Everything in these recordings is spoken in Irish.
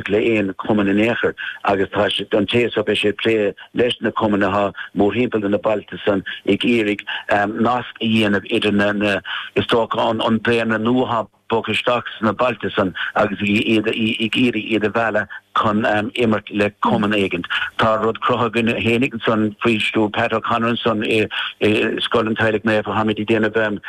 le haon chumann in aon chor agus tá sé an té seo beidh sé ag plé leis na cumainn athá mórthimpeall de na bailte san ag iarraidh nasc a dhéanamh idir na na is dócha an daonra nua athá bogadh isteach sna bailte san agus ag iad ag iarraidh iad a mhealladh chun imirt le cumann éigin. Tá rud cruthaithe againn féin ansan faoi stiúir Pat O'Connor ansan i i Scoil an Teaghlaigh Naofa. Tháimid ag déanamh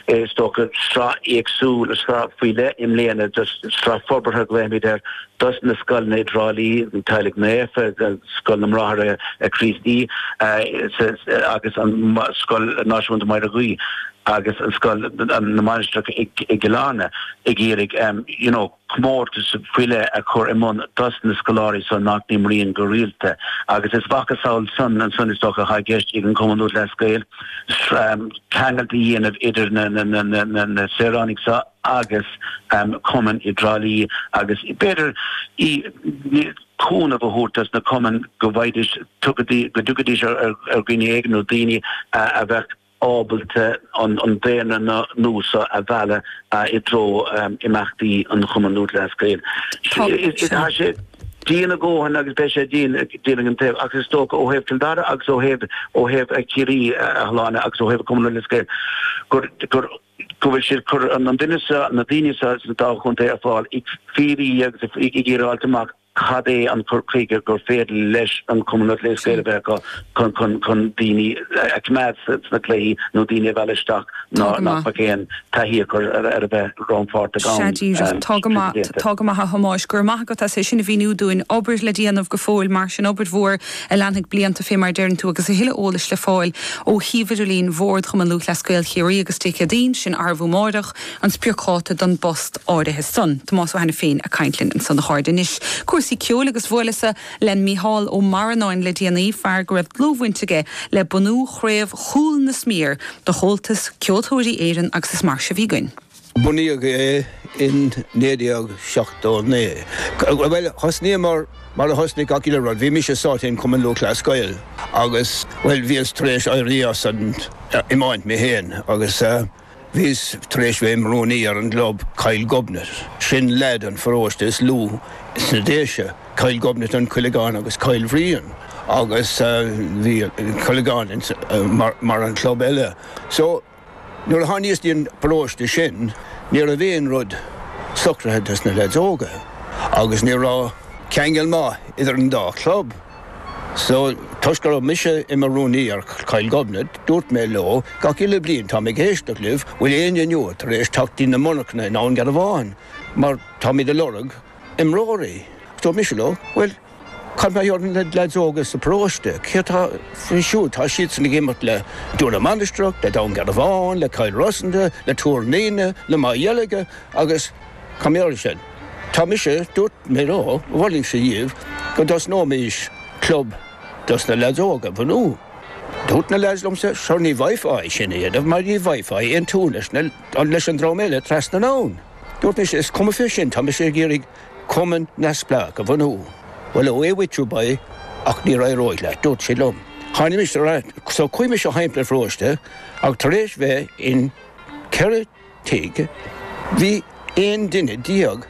is dócha sraith éagsúil sraith faoi leith i mbliana de Sraith forbartha a ghlaoimid air dos na scoileanna i dTrá Lí, an Teaghlaigh Naofa, Scoil na mBráithre Críostaí agus an Scoil Náisiúnta Máire Ghuí agus an Scoil na Mainistreach i gCill Airne ag iarraidh you know comórtas faoi leith a chur i mbun dos na scoláirí san nach n-imríonn go rialta agus is a mhacasamhail san ansan is dócha atá i gceist ag an Cumann Lúthchleas Gael ceangailt a dhéanamh idir na saoránaigh seo agus cumainn i dTrá Lí agus b'fhéidir cúnamh a thabhairt dos na cumainn go bhfaighidís, go dtiocfaidís ar dhuine éigin nó daoine a bheadh ábalta an daonra nua seo a mhealladh i dtreo imeachtaí an Chumann Lúthchleas Gael. Tá sé dian a dhóthain agus beidh sé dian dian gan dabht ach is dócha ó thaobh Cill Dara agus ó thaobh ó thaobh Chiarraí a Shláine agus ó thaobh Cumann Lúthchleas Gael gur go bhfuil siad ag cur an duine seo, na daoine seo sa dá chontae ar fáil, ag fiafraí agus ag iarraidh fháilt amach cad é an cur chuige gur féidir leis an Cumann Lúthchleas Gael a bheith acu chun chun chun daoine a choimeád sna cluichí nó daoine a mhealladh isteach ná nach bhfuil aon taithí acu ar a bheith rannpháirteach ann. Sea, díreach. Tá go maith. Tá go maith, a Thomáis. Go raibh maith agat as é sin a mhíniú dúinn. Obair le déanamh go fóill, mar sin, obair mhór. a leanfaidh blianta fé mar a deireann tú agus a thuilleadh eolais le fáil ó shuíomh idirlín Bhord Chumann Lúthchleas Gael Chiarraí agus Dé Céadaoin, sin arú amáireach an spriocdháta don bpost áirithe san. Tomás Ó hAiniféin ag caint linn ansan a chairde. Anois cúrsaí ceoil agus bhuaileas-sa le Mícheál Ó Marannáin le déanaí, fear go raibh dlúthbhaint aige le bunú chraobh Chúil na Sméar do Chomhaltas Ceoltóirí Éireann agus is mar seo a bhí againn. Bunaíodh é in 1979. Bhuel, thosnaíomar mar a thosnaigh gach uile rud, bhí mise sáite in Cumann Lúthchleas Gael agus, bhuel, bhíos tar éis éirí as an iomáint mé féin agus bhíos tar éis bheith im' rúnaí ar an gclub, Cill Ghobnait, sin leath den pharóiste is lú sna Déise, Cill Ghobnait an Coilligeán agus Cill Bhriain agus bhí an Coilligeán mar an club eile. So. Nuair a tháiníos dtí'n bparóiste sin ní raibh aon rud socraithe dos na leaids óga agus ní raibh ceangal maith idir an dá chlub so toisc go raibh mise i mo rúnaí ar Chill Ghobnait dúirt mé leo gach uile bhliain 'táim ag éisteacht libh, bhfuil éinne inniu tar éis teacht dtí na monarchana i nDún Garbhán mar táimid a' lorg imreoirí'. Dúirt mise leo 'bhuel Cad mar gheall ar na lads óga sa bparóiste, cé atá faoi siúd? Tá siadsan ag imirt le Dún na Mainistreach, le Dún Garbhán, le Cill Rosanta, le Tuar an Fhíona, le Maigh Dheilge agus mar sin. Tá mise, dúirt mé leo, mholfainnse díbh go dtosnóimís club dos na lads óga a bhunú. Dúirt na lads liomsa, sure ní bhfaighfeá é sin a dhéanamh mar ní bhfaighfeá aon tune leis an dream eile trasna anonn. Dúirt mise, is cuma fé sin, tá mise ag iarraidh, Cumann neamhspleách a bhunú. Bhuel, away with you, boy, ach ní éireoidh leat, dúirt siad liom. Tháinimis ar ais, so chuaigh mise timpeall an pharóiste ach tar éis bheith in 4 tigh, bhí 11 duine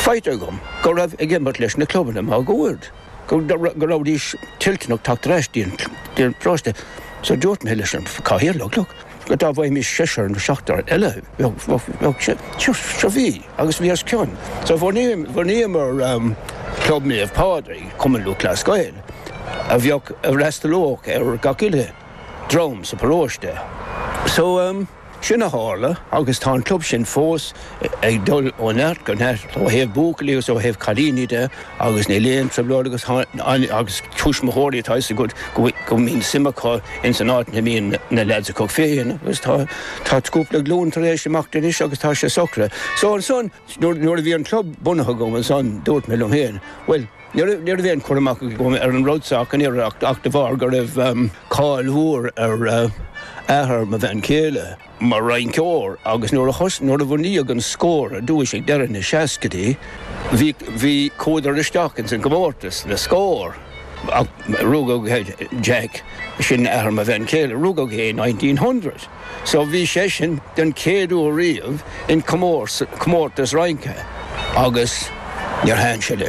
faighte agam go raibh ag imirt leis na clubanna máguaird. go rabhaidís toilteanach teacht ar ais dtí'n bparóiste so dúirt mé leis an cathaoirleach, look, go dá bhfaighimis seisear nó seachtar eile, bheadh sé, seo, bhí agus bhí os cionn. So bhunaíomar Club Naomh Pádraig, Cumann Lúthchleas Gael, a bheadh, a fhreastalódh ar gach uile dream sa bparóiste. So. Sin a tharla agus tá an club sin fós ag dul ó neart go neart ó thaobh buachaillí agus ó thaobh cailíní de agus níl aon trioblóid agus agus tuismitheoirí tá a fhios agat go mbíonn suim acu ins an áit a mbíonn na leaids acu féin agus tá tá cúpla glún tar éis imeacht anois agus tá sé socraithe so ansan Nuair a bhí an club bunaithe agam ansan, dúirt mé liom féin, bhuel, ní raibh aon chur amach agam ar an rud seo ach an oiread ach de bharr go raibh cáil mhór ar athair mo bhean chéile mar rinceoir agus nuair a bunaíodh an Scór ar dtúis ag deireadh na seascaidí, bhí, chuadar isteach insa gcomórtas, le Scór ach rugadh Jack, sin athair mo bhean chéile, rugadh é i nineteen hundred. so bhí seisean den chéad uair riamh in comórtas rince agus níor thaithin sé leis.